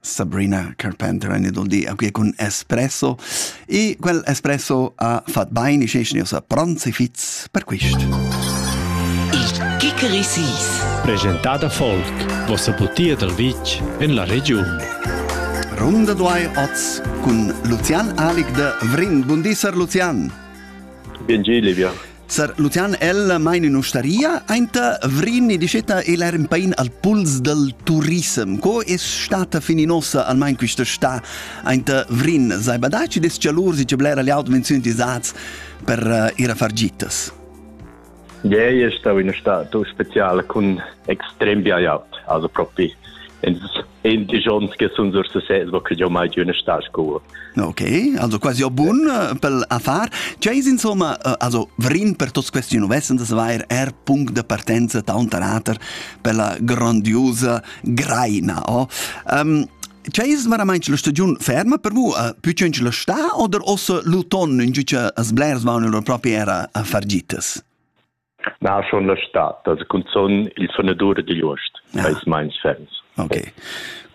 Sabrina Carpenter en il di qui con espresso e quel espresso ha fatto bene e sa pranzi fitz per questo. Il Kikerisis Presentada Folk, vossa butia dal vitg en la regiun. Runde duai oz cun Lucian Alig de Vrin. Bundisar Lucian! Bien Geli, Sar Lucian, el maina in ustaria, aint Vrin e diceta el er in pain al puls del turism. Co è stata fin in ossa, almain questa sta, aint Vrin? Sai badar ci des cialur, si ce blera le auto-menzioni tisats per uh, ir a far gitas? Ieri è stato in estata speciale con extrem biaiat, also propi ins in di schon che sun sur sesez wo che mai giù ne sta scuo ok also quasi o bun pel affar chais insomma also vrin per tos question vessen das vair er punct de partenza taunt rater per la grandiosa greina oh um, Chais veramente la stagione ferma per voi? Uh, più c'è la sta o ossa l'autunno in giuce as blers vanno loro proprie era a fargitas? Naschon la stad, das cunzun il sonadur digl uost, eis meins ferms. Ok,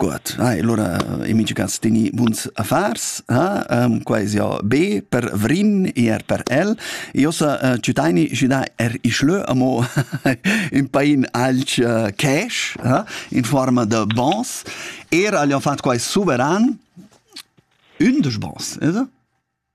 gut. Ah, allora, i mincha cas teni buns affars, ah? um, quai es ja be per Vrin, eher per el. Io sa uh, ciutaini gidà er i schlö amo in pain alch uh, cash, ah? in forma de bons. Era gli han fatto quai suveran, undisch bons, is?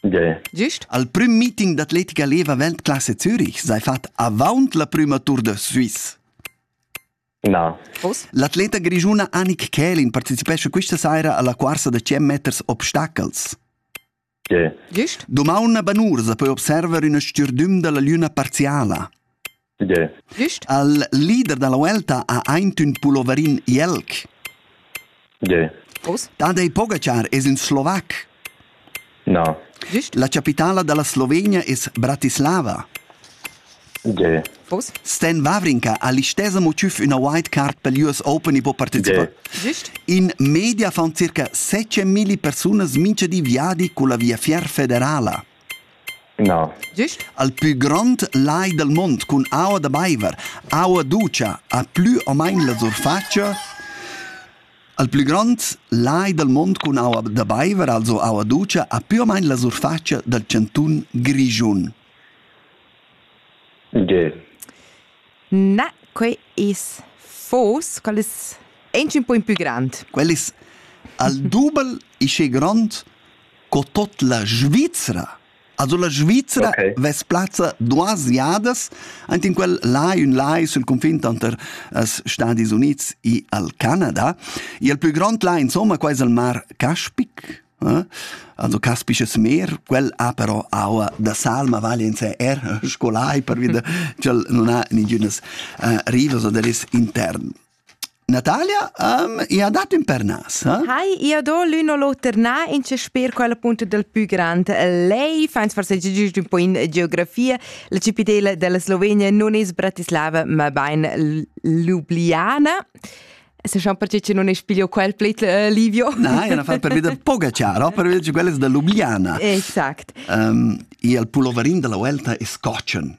Tgei? Gist al prüm meeting d'atletica leva Weltklasse Zürich sei fat avaunt la prüma Tour de Suisse. Na. Vos? L'atleta grischuna Annik Kählin participescha questa saira alla cuorsa da 100 meters obstacels. Tgei? Gist? Domaun a Banur sa poi observer üna stürdüm dalla lüna parziala. Tge? Glüscht? Al leader da la Vuelta ha aintün pulloverin jelg. Tge? Os? Tadej Pogačar es ün slovac. No. Glüscht? La capitala da la Slovenia es Bratislava. Tge? Os? Sten Wawrinka ha l'istesa motiv üna white card pel US Open e po partecipar. Glüscht? In media fan circa 7.000 persunas mincha di viadi culla Via Fier Federala. Na. Gist? Al pü grond lai dal mond cun aua da baiver, aua dutscha, ha plü o main la surfatscha al plü grond lai dal mond cun aua da baiver, also aua dutscha, ha plü o main la surfatscha dal chantun Grischun. Ge. Na, quei es fos, quel es aunch ün po in pü grand. Quel es al dubel ische grond co tot la Svizra. Also la Svizra okay. vess plazza duas iadas ant in quel lai, un lai sul confin tanter els Stadis Units e al Canada. E il plü grond lai, insomma, qua es il mar Caspic. Eh? Also Capisches Meer, quel ha però aua da sal, ma vale in sé er scolai per via ch'el non ha nigünas uh, rivas o deris intern. Natalia, um, ia dat ün pernas, ha? Hai, ia do l'un o l'oter na, in ce sper quella punta del pü grand. Lei fa ins forseggi giust un po in geografia. La cipitela della Slovenia non es Bratislava, ma bain Ljubljana. Se schon perché che non es piglio quel pleit uh, Livio. Na, ia na fa per veder Pogacar, per veder che quella es da Ljubljana. Exact. Um, e il pulloverin della Vuelta è Scotchen.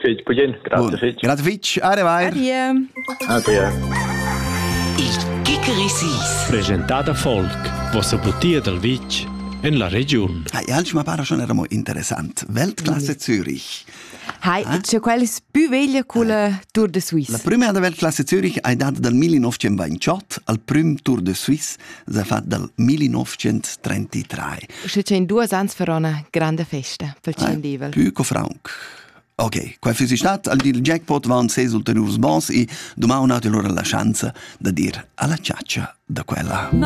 Fitg bugin. Grazie fitg. Grazie fitg. Ade vai. Adie. Adie. Il Gickerissis. Presentada Volk, vossa butia dal vitg en la regiun. Hai, ja, ma pare schon era mo interessant. Weltklasse Zürich. Hai, eh? c'è quella più veglia con la eh. Tour de Suisse. La prima della Weltklasse Zürich è data dal 1928 al primo Tour de Suisse s'ha fat dal 1933. Schi c'è in duos ans farò una grande festa pel Ciendivel. Pü co franc. Ok, quai füssi stat al dil jackpot van seis ulteriurs bons e dumà un'altra lura la schanza da dir alla ciaccia da quella. No.